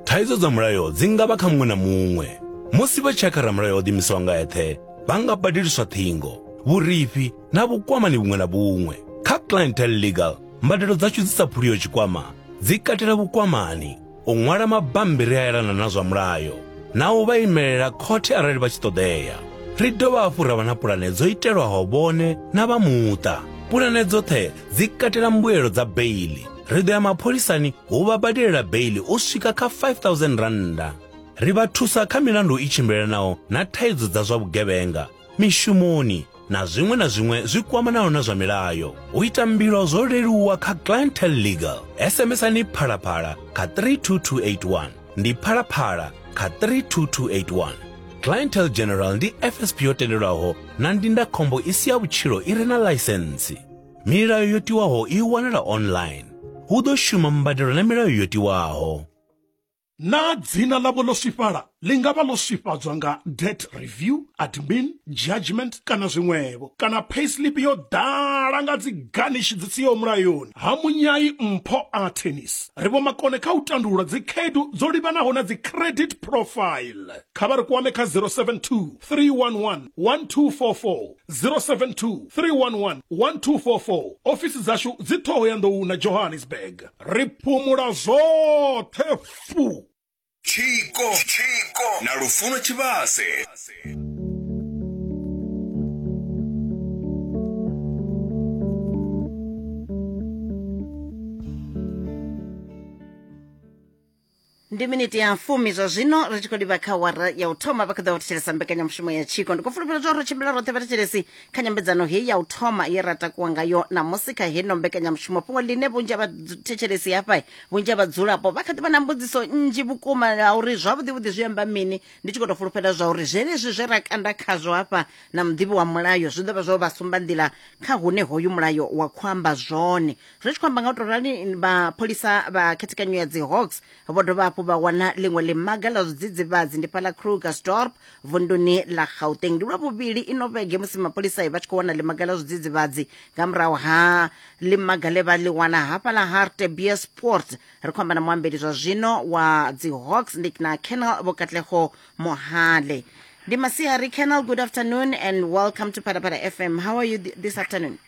Thaidzo dza mulayo dzi nga vha kha muṅwe na muṅwe. Musi vha tshi ya kha ramulayo o ḓimisaho nga eṱhe, vha nga badeliswa ṱhingo, vhurifhi na vhukwamani vhuṅwe na vhuṅwe. Kha Clientele Legal, mbadelo dzashu dzi sa phuliho tshikwama dzi katela vhukwamani, u ṅwala mabammbiri a elana na zwa mulayo na u vha imelela khothe arali vha tshi ṱoḓea. Ri dovha hafhu ra vha na pulane dzo itelwaho vhone na vha muṱa. Pulane dzoṱhe dzi katela mbuelo dza beiḽi, ri ḓo ya mapholisani hu vha badelela beili u swika kha 5000 rannda ri vha thusa kha milandu i tshimbilelanaho na thaidzo dza zwa vhugevhenga mishumoni na zwiṅwe na zwiṅwe zwi kwamanaho na zwa milayo u ita mbilo zwo leluwa kha clientel legal sms-ani phalaphala kha 32281 ndi phalaphala kha 32281 clientel general ndi fsp yo tendelwaho na ndindakhombo i si ya vhutshilo i re na ḽaisentsi Milayo yo tiwaho i wanala online. Hu ḓo shuma mbadelo na milayo yo tiwaho. Naa dzina ḽavho ḽo swifhala? Ḽi nga vha ḽo swifhadzwa nga debt review, admin, judgment kana zwiṅwevho. Kana payslip yo ḓala nga dzi ganishi dzi siho mulayoni. Ha munyai mpho Artenis, ri vhomakone kha u tandulula dzikhaedu dzo livhanaho na dzi credit profile. Kha vha ri kwame kha 072 311 1244. 072 311 1244 ofisi dzashu dzi ṱhoho ya nḓou na johannesburg ri phumula zwoṱhe fu tshiko tshiko na lufuno tshivhase ndi miniti ya fumi zwa zwino ri tshi khou livha kha wara ya u thoma vha kha ḓa vha thetshelesa mbekanyamushumo ya tshiko ndi khou fulufhela zwa uri ri tshimbila roṱhe vhathetshelesi kha nyambedzano heyi ya u thoma ye ra takuwa ngayo namusi kha heno mbekanyamushumo fhungo ḽine vhunzhi ha vhathetshelesi hafha vhunzhi ha vhadzulapo vha kha ḓi vha na mbudziso nnzhi vhukuma ya uri zwavhuḓivhuḓi zwi amba mini ndi tshi khou tou fulufhela zwa uri zwenezwi zwe ra kanda khazwo hafha na muḓivhi wa mulayo zwi ḓo vha zwo vha sumba nḓila kha hune hoyu mulayo wa khou amba zwone ri tshi khou amba nga u tou rali mapholisa vha khethekanyo ya dzihawks vho dovha hafhu vha wana ḽiṅwe ḽimaga ḽa zwidzidzivhadzi ndi fhaḽa krugersdorp vunduni ḽa gauteng ndi lwa vhuvhili ino vhege musi mapholisai vha tshi khou wana ḽimaga ḽa zwidzidzivhadzi nga murahu ha ḽimaga ḽe vha ḽi wana hafhaḽa hartebia sport ri khou amba na muambeli zwa zwino wa dzihawks ndi na canal vho katlego mohale ndi masiari canal good afternoon and welcome to phalaphala fm how are you th this afternoon